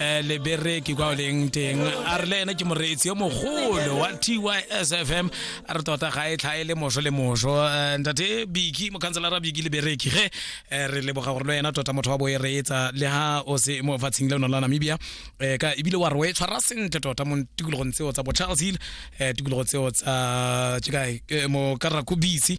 um lebereki kwa o leng teng a re le ene ke moreetsi yo mogolo wa tysfm a re tota ga e tlhae le moso le moso Eh, ntate biki mokhanselara biki lebereki ge eh, re leboga gore le wena tota motho wa bo e reetsa le ha o se mo fatsheng le ono la namibia Eh, ka ebile wa re o e tshwara sentle tota mo tikologong tseo tsa bo charles hill eh, tikologo tseo tsa ke kae Eh, mo karakobisi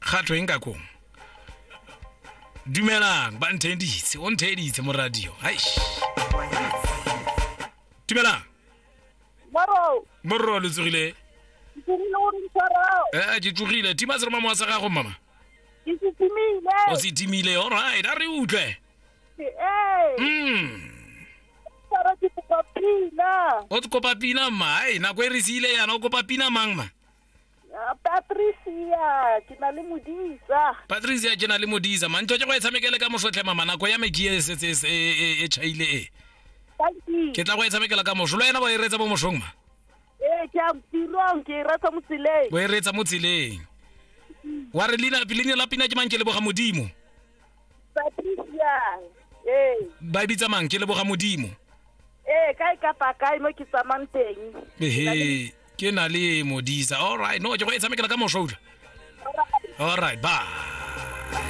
ga tlo eng ka kong dumelang ba ntheeditse o ntheeditse mo radio haish dumelang Maro, borro lo tsogile ke tsogile gore ntshwara. ee ke tsogile tima seroma mowa sa gago mama Ke se timile. o se timile alright a re utlwe Ee, mm tshwara ke kopa pina. o kopa pina mma ai nako e re siile yana o kopa pina mang ma Ah, patricia ke na le modisa patricia ke na le modisa mantlo ke go e tshamekele ka mosotlhe mama nako ya me ke e setse e- e- e- e chaile e Tanki. ke tla go e tshamekela ka moso lo ena ba e reetsa bo mosong ma ee ke a tirong ke e rata mo tseleng bo e reetsa mo tseleng wa re leina leina la pina ke mang ke leboga modimo patricia ee ba e bitsa mang ke leboga modimo ee kae kapa kae mo ke tsamang teng ehe ke na le modisa all right no ke go e tshamekela ka mosoula all right bye